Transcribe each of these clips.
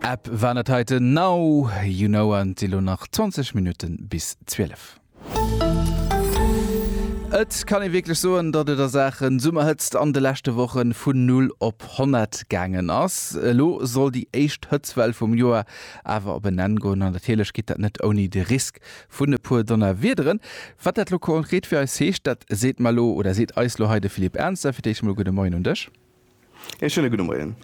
Ep waren et hei den Now You Know an et si lo nach 20 Minutten bis 12. Et kann ee wierklech soen, datt et a Saachen Summerhëtzt an de leschte Woche vun Null op Honnert gaangen ass. Elo soll déi éischt Hëtztwell vum Joer awer op en Enn goen an natierlech geet dat net ouni de Risk vun e puer Donnerwiederen. Wat dat lo konkret fir eis heescht, dat seet mer lo oder seet eis lo hei de Philippe Ernzer. Fir d'éischt emol gudde Moien un dech. E schéine gudde Moien.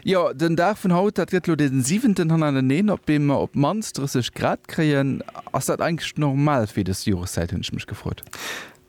Jo, den Dag vun haut, dat gëtt elo dee siwenten hannereneen, op deem mer op d'mannst 30 Grad kréien. Ass dat eigentlech normal fir dës Joreszäit, hunn ech mech gefrot.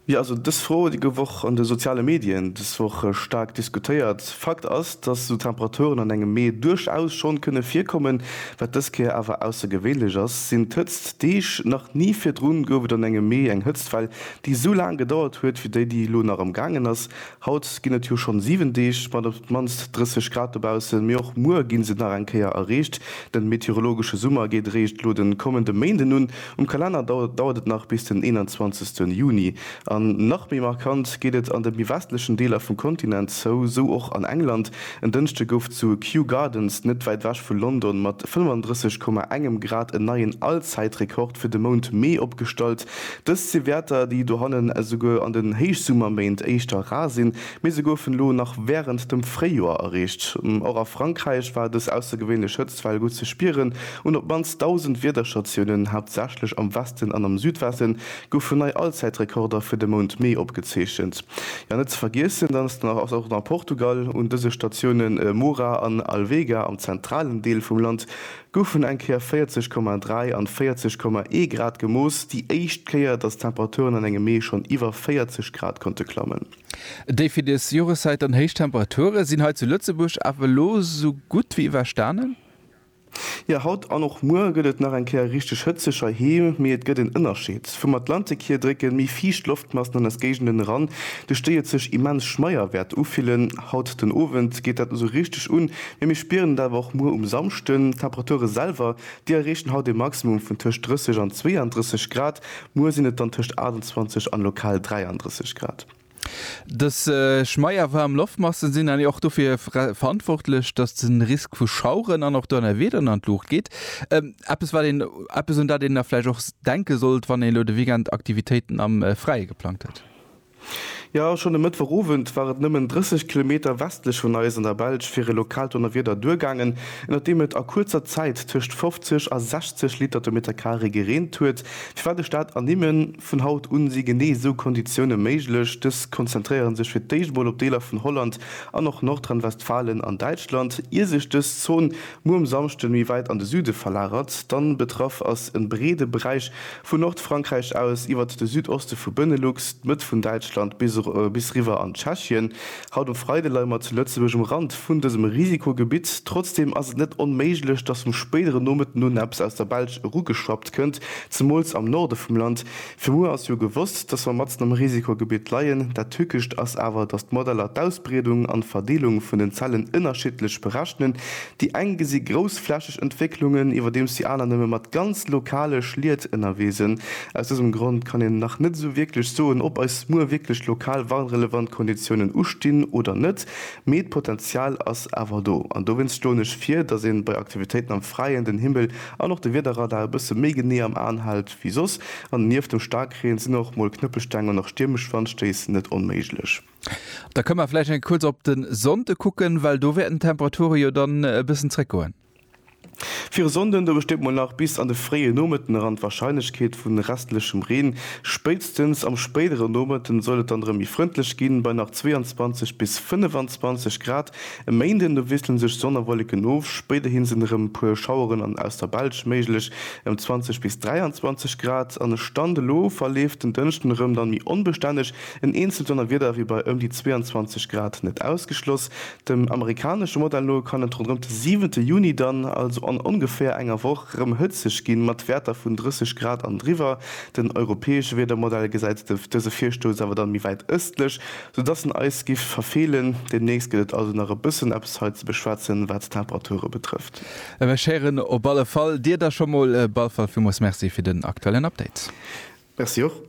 Jo, also dës Fro huet ee gouf och an de soziale Medien dës Woch staark diskutéiert. Fakt ass, dass esou Temperaturen an engem Mee duerchaus schonn kënne virkommen. Wat dës Kéier awer aussergewéinlech ass, sinn d'Hëtzt Deeg. Nach ni virdrun gouf et an engem Mee eng Hëtztwell, déi esou laang gedauert huet, wéi déi, déi elo nach am gaangen ass. Haut ginn et jo schonn 7 Deeg mat op d'mannst 30 Grad dobaussen, mee och muer gi se nach eng Kéier erreecht. Den meteorologesche Summer geet eréischt elo den kommenden Méinden un. Um Kalenner dauert et nach bis den 21 Juni. An nach méi markant geet et an de méi westlechen Deeler vum Kontinent zou, sou och an England. En Dënschde gouf zu Kew Gardens, net wäit ewech vu London, mat 35,1 Grad en neien Allzäitrekord fir de Mount Mee opgestallt. Dëst si Wäerter, déi dohannen esouguer an den Héichsummerméint éischter rar sinn, mee se goufen elo nach wärend dem Fréijoer erreecht. Och a Frankräich war dës aussergewéinlech Hëtztwell gutt ze spieren. Un op d'mannst 1.000 Wiederstatiounen, haaptsächlech am Westen an am Südwesten, goufen nei Allzäitrekorder fir de Mount Mee opgezeechent. Jo, net ze vergiessen, dann ass nach och nach Portugal. Un dëse Statiounen Moura an Alvega am zentralen Deel vum Land goufen eng Kéier 40,3 an 40,1 Grad gemooss, déi éischt Kéier, datt d'Temperaturen an engem Mee schonn iwwer 40 Grad konnte klammen. Déi fir des Joreszäit dann héich Temperature sinn hei zu Lëtzebuerg awer elo sou gutt wéi iwwerstanen. Jo, haut an och muer gëtt et nach eng Kéier richteg hëtzeg heiheem, mee et gëtt en Ënnerscheed. Vum Atlantik hier drécke méi fiicht Loftmassen an eis Géigenden eran, duerch déi et sech immens schmeier wäert ufillen. Haut den Owend geet dat esou richteg un, Mee mir spieren et awer och muer um Samschden. D'Temperature selwer, déi erreechen haut e Maximum vun tëscht 30 an 32 Grad, muer sinn et dann tëscht 28 an lokal 33 Grad. Dës schmeierwaarm Loftmassen sinn dann och dofir verantwortlech, dass de Risk vu Schaueren an och Donnerwieder an d'Luucht geet. Eppes wat een, eppes un dat een da vläicht och denke sollt, wann een elo de Weekend Aktivitéiten am Fräie geplangt huet. Jo, schonn e Mëttwoch Owend war et nëmmen 30 Kilometer westlech vun eis an der Belsch fir e lokaalt Donnerwieder duergaangen, ënnert deem et a kuerzer Zäit tëscht 50 a 60 Liter de Meter carré gereent huet. Firwat de Staat ernimmen? Vun haut un si genee esou Konditioune méiglech. Dës konzentréiere sech fir d'éischt mol op Deeler vun Holland an och Nordrhein-Westfalen an Däitschland. Ier sech dës Zon muer um Samschde méi wäit an de Süde verlagert, dann betraff ass e breede Beräich, Vu Nordfrankräich aus, iwwert de Südoste vu Benelux, d'Mëtt vun Däitschland bis riwwer an Tschechien. Haut um Freide leie mer zu Lëtzebuerg um Rand vun dësem Risikogebitt. Trotzdeem ass et net onméiglech, dass vum spéidere Nomëtten un eppes aus der Belsch erugeschwappt kënnt, zemools am Norde vum Land. Fir muer ass jo gewosst, dass mer matzen am Risikogebitt leien. Dat Tückescht ass awer, dass d'Modeller d'Ausbreedung an d'Verdeelung vun den Zellen ënnerschiddlech berechnen. Déi eng gesi groussflächeg Entwécklungen, iwwerdeems déi aner nëmme mat ganz lokale Schliet ënnerwee sinn. Aus dësem Grond kann een nach net esou wierklech soen, ob eis muer wierklech lokal warnrelevant Konditiounen ustinn oder net, mee d'Potenzial ass awer do. An dowéinst schloen ech vir, datt een bei Aktivitéiten am Fräien den Himmel an och de Wiederradar e bësse méi genee am An hält wéi soss. An nieft dem Staarkreen sinn och mol Knëppelsteng an nach stiermesch Wandstéiss net onméiglech. Da kënne mer vläicht eng Kéier kuerz op de Sonnde kucken, well do wäerten d'Temperature jo dann e bëssen zréckgoen. Fir e Sonnden, do besteet mol nach bis an de fréie Nomëtten eran d'Warscheinlechkeet vu restlechem Reen. Spéitstens am spéidere Nomëtten soll et dann erëm méi frëndlech ginn, bei nach 22 bis 25 Grad. E Méinden, do wiessele sech Sonn a Wolleken of, spéiderhi sinn erëm e puer Schaueren an aus der Belsch méiglech, ëm 20 bis 23 Grad. An e Stand elo verleeft den Dënschden erëm dann méi onbestänneg. En eenzelt Donnerwieder wier bei ëm déi 22 Grad net ausgeschloss. Dem amerikanesche Modell no kann et ronderëm de siwente Juni dann, also an ongeféier enger Woch, rëm hëtzeg ginn, mat Wäerter vun 30 Grad an driwwer. Den europäesche Wiedermodell gesäit dëse Virstouss awer dann méi wäit ëstlech, sou dass en eis giff verfeelen. Deemnächst gëtt et also nach e bëssen eppes hei ze beschwätzen, wat d'Temperature betrëfft. Mech héieren op alle Fall dir da scho mol. Balfall, villmools Merci fir den aktuellen Update. Merci och.